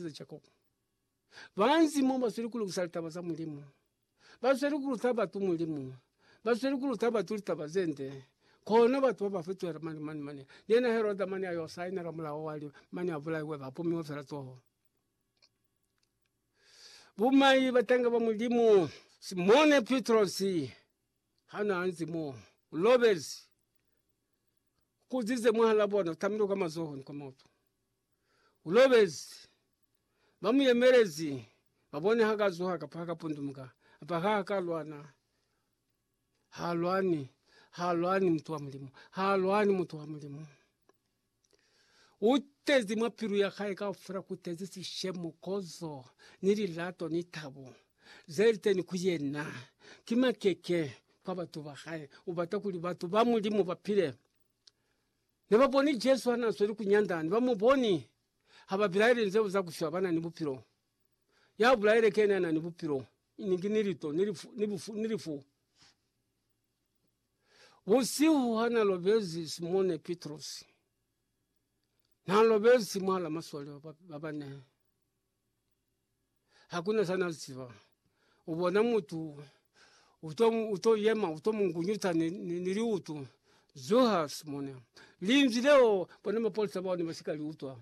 za Jakobo. Ba nzimo ba zweli ku lukisa litaba za Mulimu. Ba zweli ku luta batu Mulimu. Ba zweli ku luta batu litaba ze nde. Kono batu ba ba fitohela mane mane mane. Yena Heroda mane a yo sainela mulao wa li mane a bulaiwe ba pumiwe fela toho. Bumai batanga ba Mulimu. Simone Pitrosi ha na nzimo u lobezi, u kuzize mwahal'a bona, u tamile kwa mazohoni kwa mautu. U lobezi. Ba mu yemelezi, ba bone ha ka zuha kapa ha ka pundumuka, kapa ha ka lwana. Ha lwani, ha lwani mutu wa Mulimu, ha lwani mutu wa Mulimu. U tezi mwa pilu ya hae kaufela, ku tezi sishemo, kozo, ni lilato, ni tabo ze li teni ku yena. Ki makeke kwa batu ba hae, u bata kuli batu ba Mulimu ba pile. Ne ba boni Jesu ha na sweli ku nyanda, ne ba mu boni ha ba bilaele nzeo za ku shwa ba na ni bupilo. Ya bulaile kene ya na ni bupilo, ni ki ni lito, ni lifu, ni bufu, ni lifu. Busihu ha na lobezi Simone Pitrosi, na lobezi mwa la masole ba bane. hakuna sana ziba ubona mutu utomu uto yema utomu ngunyuta ni- ni- niliutu zuha simona linzi leo pano mapolisa boni masika liutwa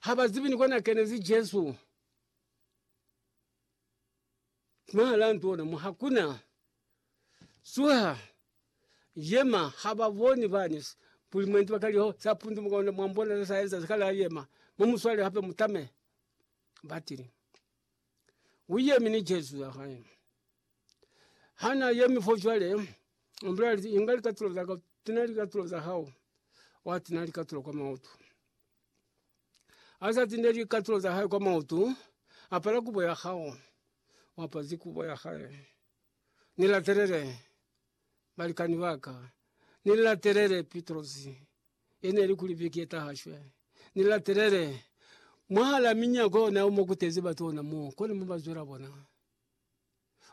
haba zibi ni kona kene zi Jesu. Mahala ntona mo hakuna suha yema hababoni bani kuli mwendi bakaliho sapundu mukona mwambona za saenza zikala yema mumuswale hape mutame batili wiye mini Jesu yahaya hana yemi fo shwale umbrali ingali katulo zaka tunali katulo zahao watina likatulo kwa mautu. Azazi ne li katulo za hae kwa mautu apala kubo ya hao wapa zikubo ya hae nila telele balikani baka nila telele pitrosi ene likuli vikie tahashwe nila telele mwahala minya ko na umo kutezi batu ona mo kole muba zwela bona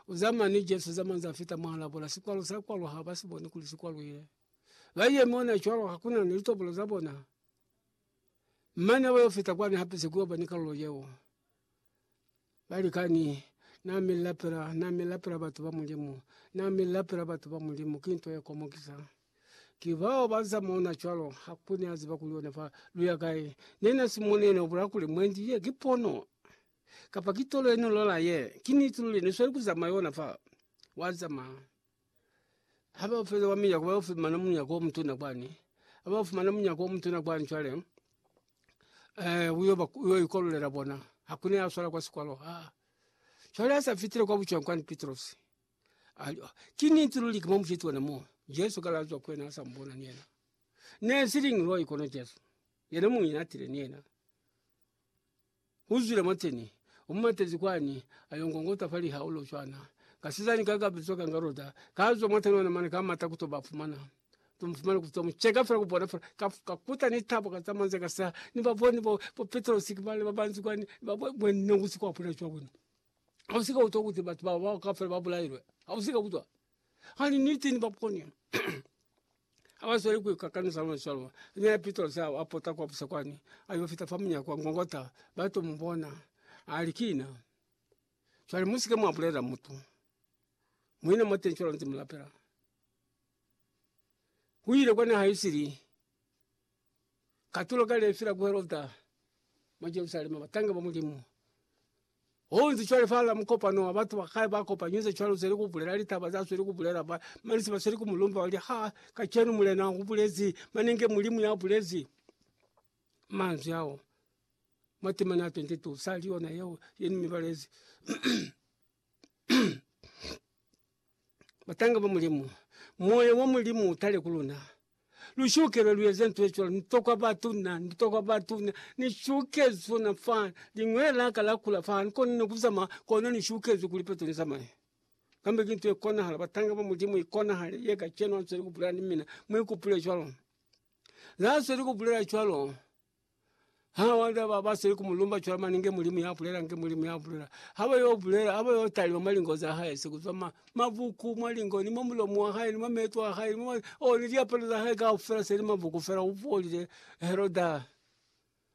uzamani jesu zama za fita mala bola sikwalu zakwa lwa haba siboni kuli sikwa lwile laie mona chwalo hakuna nilitobola za bona. Mane ba yo fita kwani hape se kuyo bani kalulo yeo bali kani na mila pela na mila pela batu ba mulimu na mila pela batu ba mulimu kintu ya komo kisa. Kibao bansa mona chwalo hakuna azi ba kuiona fa luya kae nena simone no bula kuli mwendi ye kipono kapa kitolo ino lola ye kini tululi ni swali kuza mayona fa waza ma. habafela wa minyako ba fumana munyaka omutuna kwani, abafumana munyaka omutuna kwani cwale uyo ikolelela bona hakuna yaswala kwa sikolo cwale asafitile kwa buca kwani Pitrosi kini ntululi kimo mfitwa namo Yesu kalazwa kwena asambona ni ena ne silingi lwa ikono Jesu yene munyatile ni ena. Uzwile mwateni, umumatezi kwani, ayo ngongota fa lihaulo cwana. Kasizani ka kabizwa kanga Rota kazwa mwateni ona mane ka mata kuto bafumana. To mufumana kuto mucheka fela kubona fela ka kakuta ni tabo ka tamanze ka sa ni baboni bo bo Petrosi ki bale babanzi kwani ba bo bo nongusi kwa pula cwa kwenu. Ausika uto kuti batu ba ba ka fela ba bulailwe. Ausika kutwa. Hani niti ni baponi abasweli kwi kakani za lona cwalo ni ya pito zao apota kwa busa kwani ayo fita fa munyako wa ngongota bato mubona ali kina swali musike mwa bulela mutu mwina mate ncholo nti mulapela wile kona haisili katulo kale fila ku Herota mwa Jerusalema batanga ba Mulimu. Honzi cwale fala mukopano wa batu ba kale ba kopanyuze cwalo zeli ku bulela litaba za sweli ku bulela ba manisi ba sweli ku mulumba wali ha kacenu mulena u bulezi manenge Mulimu ya bulezi manzwi ao. Matima na 22 sali yona yeo yeni mibalezi Batanga ba Mulimu, Moya wa Mulimu utale ku luna. Lushukela luyeze nto ecwalo, nitokwa batuna, nitokwa batuna, nishukezwe na fa ling'we laka la kula fa nkona no kuzama kona nishukezwe kuli peto lizamaye. Kambe ki nto ekonahala, batanga ba Mulimu ikonahale ye kacenu answeli kubulela ni mina, mwikupule cwalo. Nasweli kubulela cwalo. Ha wanda ba ba sili ku mu lumba cwale mane nge Mulimu ya bulela nge Mulimu ya bulela. Ha ba yo bulela ha ba yo talima mwa lingo za hae se kuzwa ma- mabuku mwa lingo ni mwa mulomo wa hae ni mwa meto a hae ni mwa o ni liapalo za hae kaufela se li mabuku fela u folile Heroda.